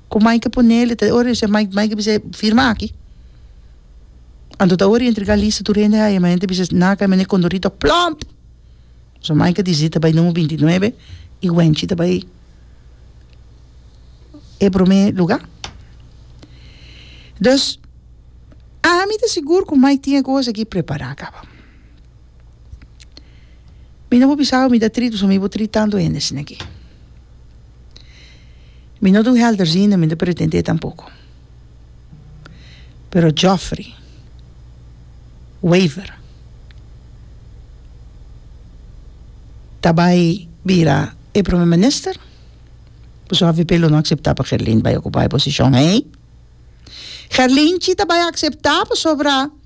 Ku mai ke ponel e ta ora e bisa mai mai ke bisa firma aki anto ta ora i entrega lista tur hende hae mai hende bisa na kai mende kondorito plomp so mai ke disidi ta bai numer binti nuebe i wènchi ta bai e prome luga dus ami ta sigur ku mai tin e kos aki prepara kaba. Mi no bo bisa awe mi ta tris pasobra mi bo tris tanto hende asina aki. Mi no ta un helderziende mi no ta pretende tampoco. Pero Jofrey, Wever ta bai bira e prome minister pasobra avp lo no acepta pa Gerlin bai ocupa e posicion ei. Gerlin chi ta bai acepta pasobra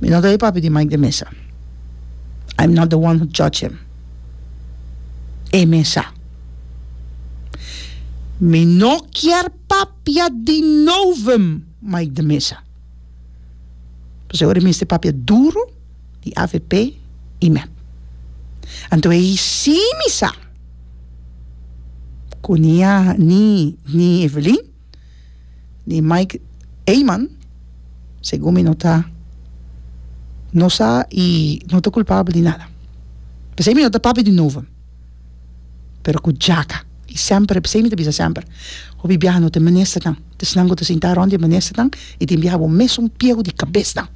Mi no ta e papi di Mike de Mesa. I'm not the one who judge him. E mesa. Mi no kier papia di novum Mike de Mesa. Pasobra ora e mester papia duru di avp y mep. Anto e hisi mi sa cu ni Evelyn. di Mike Eman, segun mi no ta no sa y no ta culpabel di nada. P'esey mi no ta papia di nuvo, pero cu djaca y semper, p'esey mi ta bisa semper, hopi biaha no ta e ministernan, ta esnan cu ta sinta rond di e ministernan y tin biaha bo mes un piego di cabesnan.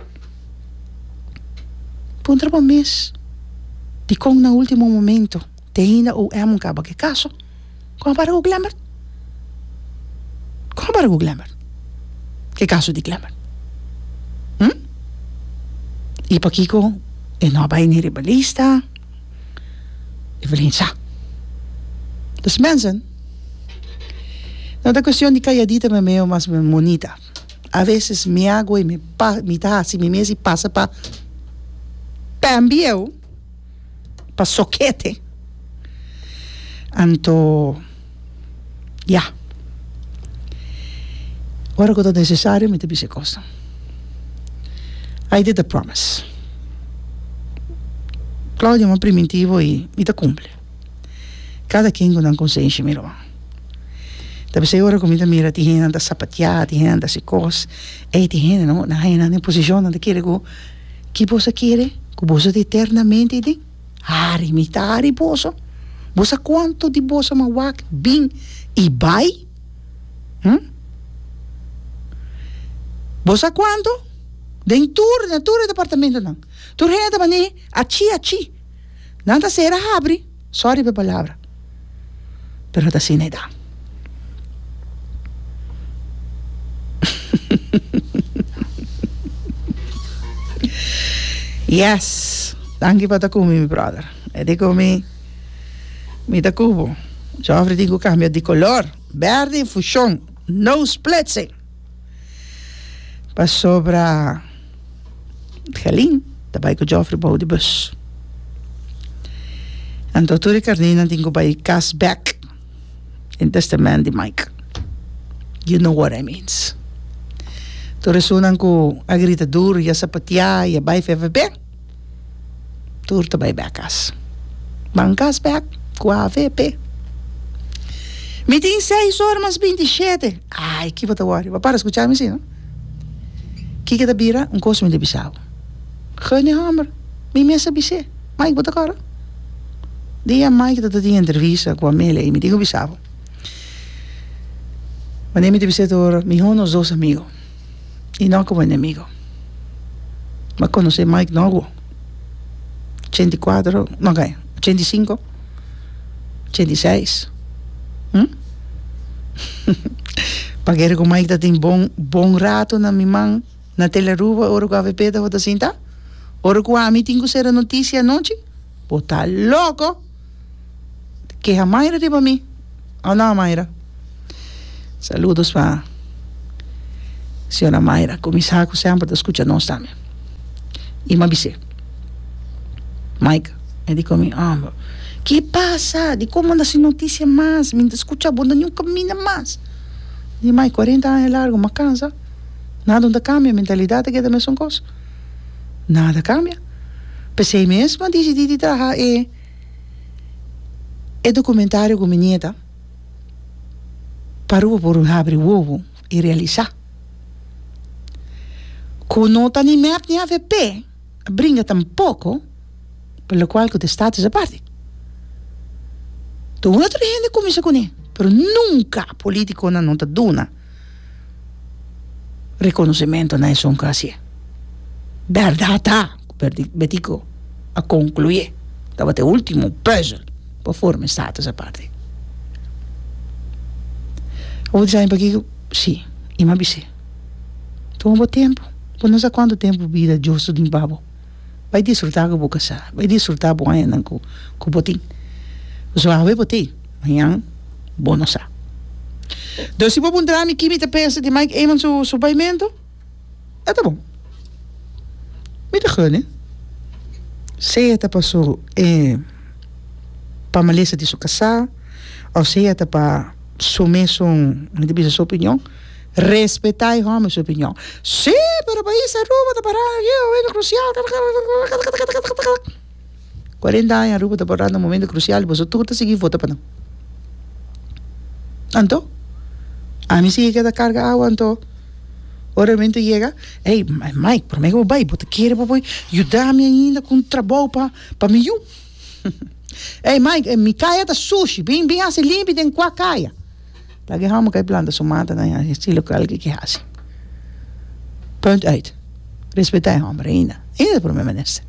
Puntra bo mes, dicon na ultimo momento? Te ainda UM un caba cu e caso? Con a para cu Glembert? Con a para cu Glembert? Cu e caso di Glembert? Hm? Y pakico e no a bay ni riba lista? Evelyn sa. Dus mensen, no ta cuestion di calladita memeo mas bien monita. A veces mi a goe mi pa, mi ta haci mi mes y pasa pa Pam bieu. pa sokete anto ya ora ku ta nesesario mi ta bisa e kosnan ai di ta promise Claudia mon primintivo i mi ta kumpli kada ken ku nan konsenshi mi ruman ta bisa e ora ku mi ta mira tin hende nan ta sapatia tin hende nan ta hasi kos ei tin hende nan hasi nan den posishon nan ta kere ku Ki bos a kere? Ku bos a ta eternamente den hari, mi ta hari boso. Bo sa kuantu di boso m'a wak bin i bai? Hm? Bo sa kuantu? Den tur, na tur e departamentonan, tur hende ta bani achi achi. Nan ta sera habri. Sorry pa e palabra pero no ta asina e ta. Yes tanki pa ta ku mi mi brother e di ku mi mi ta ku bo Jofrey tin ku kambia di kolor bèrdè fushon no splitsing. Pasobra Gelin ta bai ku Jofri bou di bus. Anto tur e karnénan tin ku bai kas bèk den tèstamènt di Mike. Yu no wòt ai mins. Tur esunnan ku a grita dur i a sapatiá i a bai fèfèbè. tur ta bai bek kas ban kas bek ku avp mi tin seis ora mas binti i shete ai kipa ta wori bo a para skucha mi si no kiko ta bira un kos mi ta bisa bo Guny homber mi mes a bise Mike bo ta kor dia Mike ta tin entrevista ku Amelia ei mi tin ku bisa bo wanneer mi ta bise tur mi hunus dos amigo y no como enemigo m'a conoce Mike Novo ochenta y cuatro no kaya ochenta y cinco ochenta y seis paguera cu Mike ta tin bon bon rato na mi man na tele Aruba ora cu avp tabata sinta ora cu ami tin cu cera noticia anochi bo ta loco Keha Mayra riba mi. Hola Mayra. Saludos pa señora Mayra cu mi sa cu semper ta scucha nos tambe. Y mi a bis'é, Mike, e di comi, Homber, ke pasa? Dicon manda sin noticia mas? Mi no ta scucha bo na niun caminda mas. Mi di, Mike, cuarenta aña largo, mi a cansa. Nada no ta cambia, mentalidad ta keda mesun cos. Nada cambia. P'esei mes mi a dicidi di traha e E documentario cu mi nieta pa rubo por habri wowo y realisa cu no ta ni mep ni avp a bringa tampoco por lo cual cu ta status aparte otro hende cuminsa cune pero nunca politiconan no ta duna. reconocimento na esun cu a hacié. Berdad ta cu Betico a conclué tabata e ultimo puzzel pa forma e status aparte. Bo a bisa ami pakico? Sí, i mi a bis'é. Tuma bo tempu, bo no sa cuantu tempu bida justo tin pa bo. Bai disfrutá ku bo kasá, bai disfrutá bo añanan ku ku bo tin. Pasobra hawe bo tei, mañan bo no sa. Enton si bo a puntra mi ki mi ta pensa di Mike Eman su su paimentu, e ta bon. Mi ta gene, sea ta pa su e pa malesa di su kasá òf sea ta pa su mesun, mi ta bisa su opinion Respetá e hòmber su opinion. Sí, pero pais Aruba ta pará na e momentu krusial, kakatakatakatakatakatakatakatak. Kuarenta aña Aruba ta pará na un momentu krusial i boso tur ta sigui vota pa nan. Anto? Ami sigui keda karga awa anto ora e momentu yega, ey Mike, promé ku bo bai, bo ta kere bo por yuda mi ainda ku un trabou pa pa mi yu? Ey Mike, mi kaya ta sushi, bin bin hasi limpi den kua kaya. Laga e hòmber kai planta su mata na e estilo ku algi ke hasi. Punt uit. Respetá e hòmber ainda. Ainda ta por me menester.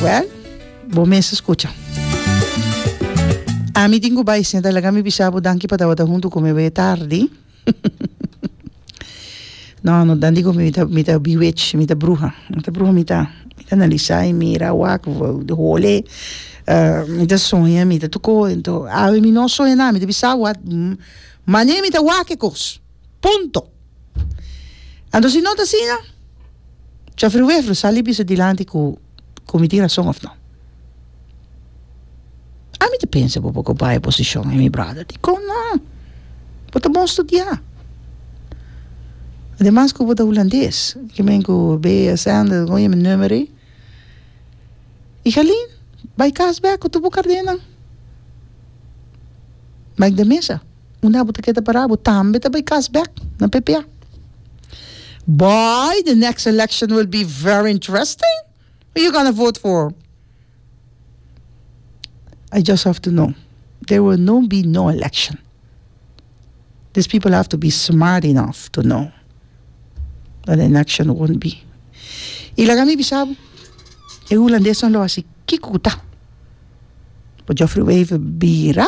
Wèl, bo mester skucha. Ami tin ku bai senta, laga mi bisa bo danki pa tabata huntu ku mi awe tardi. No no dan di ku mi ta mi ta biwich mi ta bruha mi ta bruha mi ta analisa y mira wak di hole mi ta soña mi ta tuko ento awe mi no soña nada mi ta bisa awor mane mi ta wak e kos punto anto si no ta asina chofri wefro sali bisa dilanti ku cu mi tin razon of no. Ami ta pensa bo por cumpara e posicion e mi brother. Dicon no? Bo ta bon studia. Ademas cu bo ta Hulandes. Ki men cu Bea, Sander, con oye mi numero ey. Y Galeen, bay cas bek cu tur bo cardennan. Mike de Mesa. Unda abo ta keda para? Abo tambe ta bai kas bek na PP? Boy the next election will be very interesting who you gonna vote for? I just have to know there will no be no election this people have to be smart enough to know that the election won't be y laga mi bisa bo e hulandes nan lo hasi kiko ku ta por Jofrey Wever bira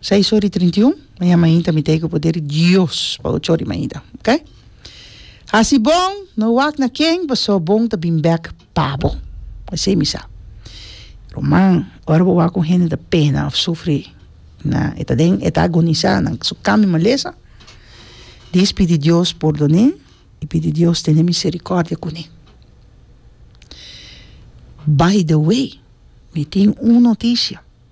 Seis ora i trinta i un mañan mainta mi ta hiko poder di Dios pa ocho ora mainta, ok? Hasi bon, no wak na ken, paso bon ta bin bek pa bo. Esei mi sa. Ruman, ora bo wak un hende ta pena of sufri na e ta den e ta agonisa na su kan mi malesa, dis pidi Dios pordone i pidi Dios tene misericordia kune. By the way, mi tin un noticia,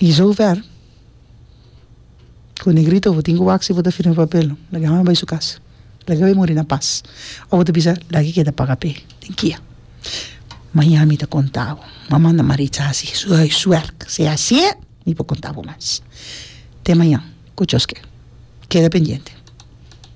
I zover ku Negrito bo tin ku wak si bo ta firma papel laga hami bai su kas laga bai muri na pas o bo ta bisa laga i keda paga p'e den kia maña mi ta konta bo mi a manda Maritza hasi su huiswerk si asie mi por konta bo mas te maña ku chos ke keda pendiente.